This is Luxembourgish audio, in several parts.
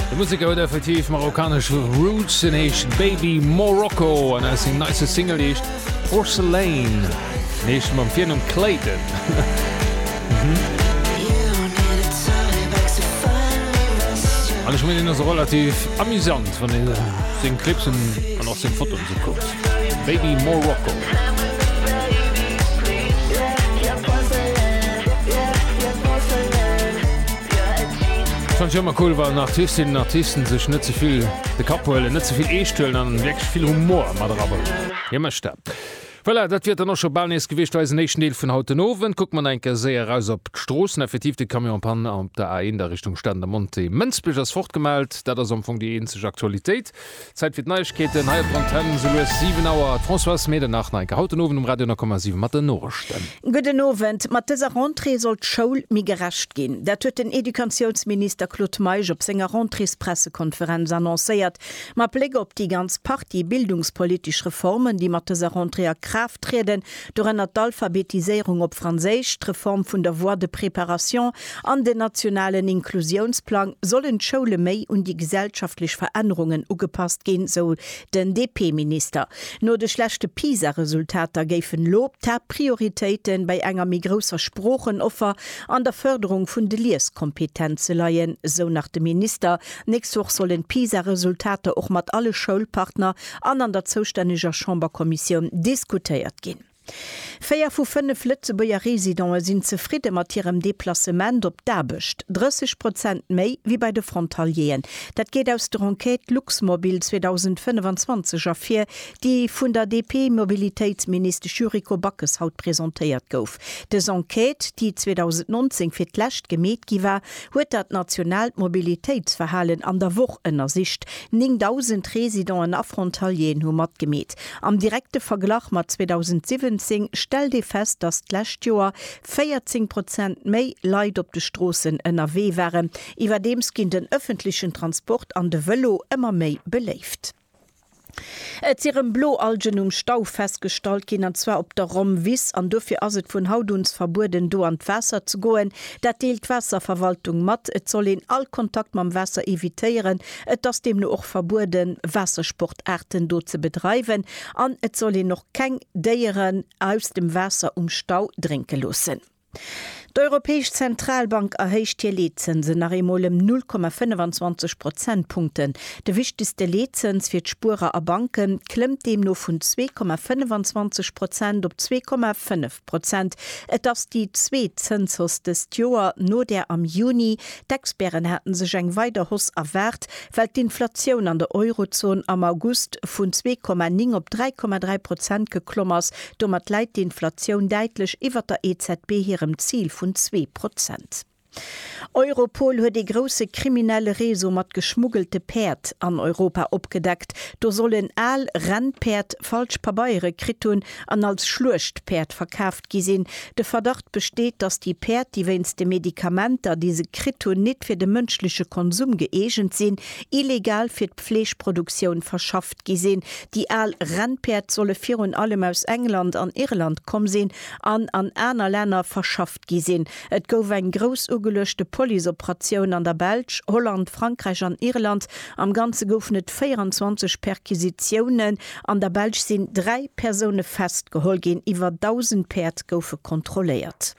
De Museker huet effektiv marokkanesch Roots, en heescht Baby Morocco an ass seng neiste Single heescht Porcelain, en heescht mam Virnumm Clayton. An ech mengen, en ass och relativ amusant, wann ee seng Clips an och seng Fotoen esou kuckt. Baby Morocco. Fan ech ëmmer cool wann Artistinnen Artisten sech net zevill de Kapp huelen, net zevill eescht huelen an wierklech vill Humor mat erabréngen. Hie mécht dat. Voilà, dat wier et dann och scho bal nees gewiescht fir eisen éischten Deel vun haut den Owend. Kucke mer nach eng Kéier séier eraus op d'Stroossen. Effektiv, de Camion en panne op der A1 a Richtung Stade Monté. Mënsbech ass fort gemellt, dat ass am Fong déi eenzeg Aktualitéit. Zäit fir d'Neiegkeeten hei op Antenn, sou lues 7 Auer. D'Françoise Medernach, Neike, haut den Owend um Radio 9,7 mat den Norechten. Gudden Owend. Mat dëser Rentrée soll d'Schoul méi gerecht ginn. Dat huet den Educatiounsminister Claude Meisch op senger Rentréespressekonferenz annoncéiert. Mat Bléck op déi ganz Partie bildungspolitesch Reformen, déi mat dëser Rentrée a Kraaft trieden, Dorënner d'Alphabetiséierung op Franséisch, d'Reform vun der Voie de préparation an den nationalen Inklusiounsplang, sollen d'Schoule méi un déi gesellschaftlech Verännerungen ugepasst ginn, sou den DP-Minister. No de schlechte PISA-Resultater géifen elo d'Haaptprioritéite bei enger méi grousser Sproochenoffer an der Fërderung vun de Lieskompetenze leien, sou nach de Minister. D'nächst Woch sollen d'PISA-Resultater och mat alle Schoulpartner an an der zoustänneger Chamberkommissioun diskutéiert ginn. Véier vu fënnef Lëtzebuerger Residente sinn zefridde mat hirem Deplacement op d'Aarbecht, 30 Prozent méi wéi bei de Frontalieren. Dat geet aus der Enquête Luxmobil 2025 ervir, déi vun der DP-Mobilitéitsministesch Yuriko Backes haut presentéiert gouf. Dës Enquête, déi 2019 fir d'lescht gemeet gi war, huet dat nationaalt Mobilitéitsverhalen an der Woch ënnersicht. 9.000 Residenten a Frontalieren hu matgemeet. Am direkte Verglach mat 2017 stellt ee fest, datt d'lescht Joer 14 Prozent méi Leit op de Stroossen ënnerwee waren. Iwwerdeems ginn den ëffentlechen Transport an de Vëlo ëmmer méi beléift. Et si rëm Bloalgen um Stau festgestallt ginn, an zwar op der Rhomwiss, an dofir ass et vun haut un verbueden, do an d'Waasser ze goen. Dat deelt d'Waasserverwaltung mat. Et soll een all Kontakt mam Waasser evitéieren. Et ass deemno och verbueden, Waassersportaarten do ze bedreiwen, an et soll een och keng Déieren aus dem Waasser um Stau drénke loossen. D'Europäesch Zentralbank erhéicht hir Leetzënsen nach eemol ëm 0,25 Prozentpunkten. De wichtegste Leetzëns fir d'Spuerer a Banke klëmmt deemno vun 2,25 Prozent op 2,5 Prozent. Et ass déi zweet Zënshausse dëst Joer no där am Juni. D'Experten hate sech eng weider Hausse erwaart, well d'Inflatioun an der Eurozon am August vun 2,9 op 3,3 Prozent geklomm ass, Domat läit d'Inflatioun däitlech iwwer der EZB hirem Zil vun zwee Prozent. Europol huet ee grousse kriminelle Réseau mat geschmuggelte Päerd an Europa opgedeckt. Do soll en al Rennpäerd falsch Pabeiere kritt hunn an als Schluechtpäerd verkaaft gi sinn. De Verdacht besteet, datt déi Päerd, déi wéinst de Medikamenter, déi se kritt hunn, nit fir de mënschleche Konsum gëeegent sinn, illegal fir d'Fleeschproduktioun verschafft gi sinn. Déi al Rennpäerd solle virun allem aus England an Irland komm sinn an an aner Länner verschafft gi sinn. Et gouf eng grouss ugeluechte Policeoperatioun an der Belsch, Holland, Frankräich an Irland. Am Ganze goufen et 24 Perquisitiounen. An der Belsch sinn dräi Persoune festgeholl ginn. Iwwer 1.000 Päerd goufe kontrolléiert.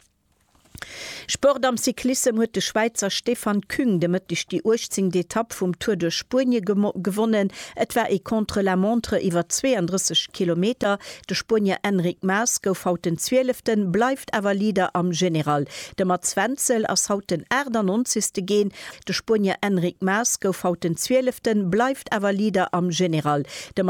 Sport am Cyclissem huet de Schwäizer Stefan Küng de Mëtteg déi uechtzéngt Etapp vum Tour duerch Spuenie gewonnen. Et war ee Contre-la-montre iwwer 32 Kilometer. De Spuenier Enric Mas gouf haut den Zwieleften, bleift awer Leader am General. De Mats Wenzel ass haut den Aachtannonzegste ginn. De Spuenier Enric Mas gouf haut den Zwieleften, bleift awer Leader am General. De